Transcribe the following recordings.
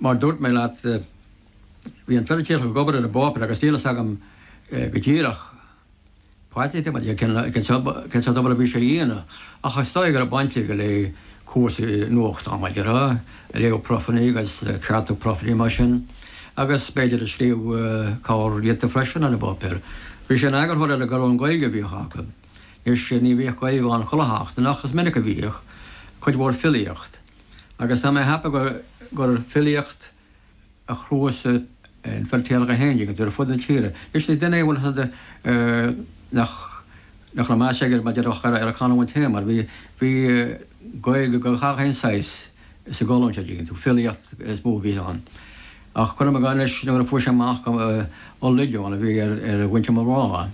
Mar a dúirt mé leat, bhí an Feirtéarach ag obair ar an bpáipéar agus níl fhios agam go díreach mar a déarfá cén sórt obair a bhí sé a dhéanamh ach is dóigh go raibh baint aige le cúrsaí nuachtáin mar a déarfá, ag léamh profanna agus ag ceartú profanna mar sin agus b'fhéidir ag scríobh corr-alt freisin ar an bpáipéar. Bhí sé ina eagarthóir ar an gcolún Gaeilge a bhíodh acu. Anois ní bhíodh Gaeilge ann chuile sheachtain ach is minic a bhíodh. Cuid mhór filíocht. agus tá mé ag ceapadh gur filíocht a chnuasaigh an Feirtéarach é féin, an dtuigeann tú, ar fud na tíre. Anois ní duine é bhfuil fhios agat nach nach raibh meas aige mar a déarfá ar a chanúint féin mar bhí bhí Gaeilge de gach aon saghas sa gcolún seo tuigeann tú. Filíocht is mó a bhí ann. Ach cuirim i gcás anois nuair a fuair sé amach gur Ó Loideáin a bhí ar ar mhuintir mo mhná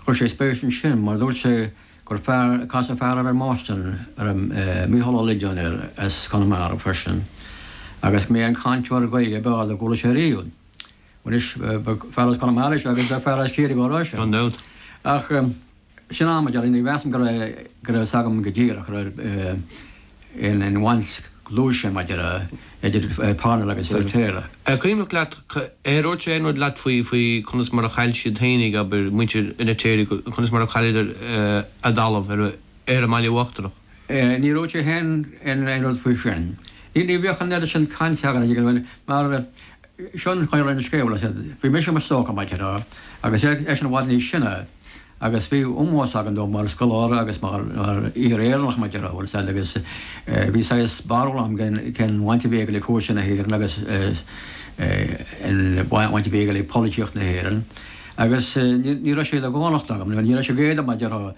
chuir sé spéis ansin mar dúirt sé gur casadh fear i mBoston air, Micheál Ó Loideáin air as Conamara freisin agus b'é an cainteoir Gaeilge ab fhearr dá gcuala sé riamh anois fear as Conamara is ea agus ba fear as Ciarraí dhá rá ach sin mar a déarfá ní mheasaim go raibh go raibh fhios agam go díreach an raibh. aon aon bhaint dlúth mar a déarfá idir Parnell agus Feirtéar. An cuimhneach leat ar dhúirt sé aon rud leat faoi faoi conas mar a chaill siad féinig, abair, muintir Fheirtéir go conas mar a chailleadar a dtalamh ar ar an mBaile Uachtarach? Níor dhúirt sé féin aon rud faoi sin. Ní ní bhíodh an oiread sin cainte againn an bhfuil fhios agat, mar seo an chaoi a raibh an scéal, bhí mise i mo stócach mar a déarfá agus eisean i bhfad níos sine, agus bhí ómós againn dó mar scoláire agus mar fhíor Éireannach mar a déarfá, bhfuil fhios agat, agus bhí saghas barúil agam cén bhaint a bhí aige le cúrsaí na hÉireann agus an bhaint a bhí aige le polaitíocht na hÉireann agus ní raibh sé de dhánacht agam nó ní raibh sé d'éadan mar a déarfá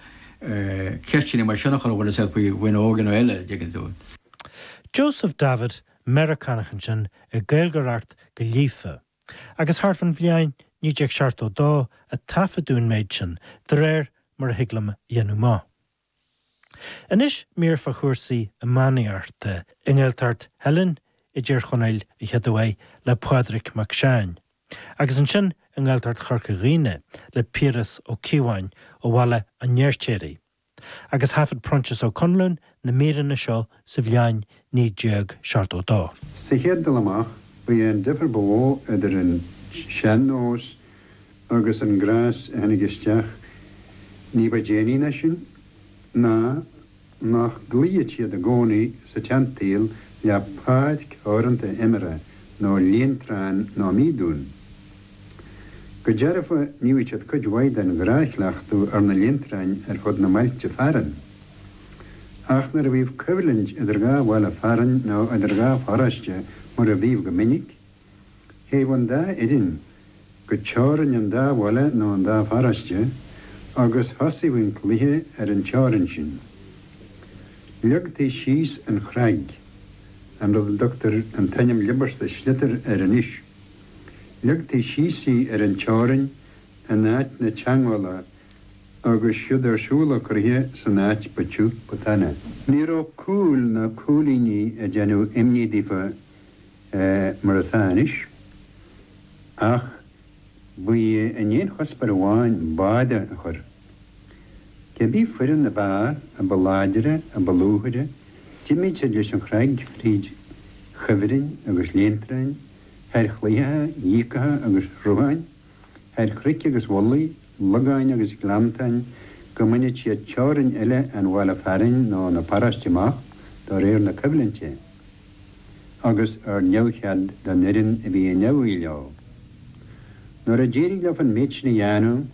ceisteanna mar sin a chur air, bhfuil fhios agat, faoi dhaoine óga nó eile, an dtuigeann tú. Joseph Davitt, Meiriceánach ansin ag Gaeilgeoireacht go líofa. agus thart fán bhliain 1972 a taifeadadh an méid sin, de réir mar a thig liom a dhéanamh amach. Anois mír fá chúrsaí iománaíochta i nGaeltacht Theilinn i dTír Chonaill an chéad uair le Pádraig Mac Seáin, agus ansin i nGaeltacht Chorca Dhuibhne le Piaras Ó Cíobháin ó Bhaile an Fheirtéaraigh. agus thaifead Proinsias Ó Conluain na míreanna seo sa bhliain 1972. Sa chéad dul amach, ba é an difear ba mhó idir an sean-nós agus an gléas a tháinig isteach ní ba déanaí ná sin ná nach gcloífeadh siad i gcónaí sa tseansaol le páirc theoranta imeartha nó líon treán ná míodún. Go dearfa, níodh siad cuid mhaith den ghnáthchleachtadh ar na léantráin ar fud na mbailte fearainn. Ach nuair a bhíodh coimhlint idir dhá bhaile fearainn nó idir dhá pharóiste, mar a bhíodh go minic, théadh an dá fhoireann go teorainn an dá bhaile nó an dá pharóiste agus thosaíodh an cluiche ar an teorainn sin. Leagtaí síos an chreag, an rud a dtugtar an t-ainm liobasta sliotar air anois. Leagtaí síos í ar an teorainn in áit na teangmhála agus siúd ar siúl an cluiche san áit ba tiubh ba taine. Ní raibh cúil ná cúilíní ag déanamh imní daofa mar atá anois ach ba í a n-aon chuspóir amháin báide a chur. Cé bith foireann ab fhearr a ba láidre, a ba luaithe, d'imíodh siad leis an chreag fríd chuibhrinn agus léantráin, thar chlaíocha, dhíogacha agus shrutháin, thar chnoic agus mhullaigh, logáin agus gleanntáin, go mbaineadh siad teorainn eile an bhaile fearainn nó na paróiste amach do réir na coimhlinte, agus ar neamhchead don fhoireann a bhí in iomaidh leo. Nuair a d'éirigh leofa an méid sin a dhéanamh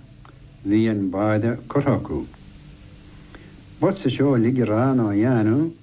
bhí an báide curtha acu. B'fhusa seó uilig a rá ná a dhéanamh.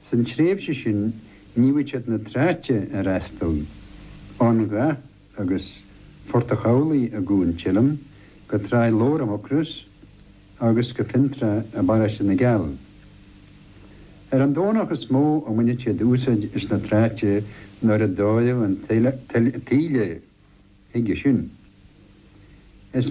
Sa tréimhse sin níodh siad na tráite a fhreastal, ón Ghaoth agus Phort an Chabhlaigh i gCuan Teilinn go Trá Leabhair i Mucros agus go Fionntrá i bparóiste na gCeall. Ar an Domhnach is mó a mbaineadh siad úsáid as na tráite nuair a d'fhóireadh an taoille chuige sin. Is.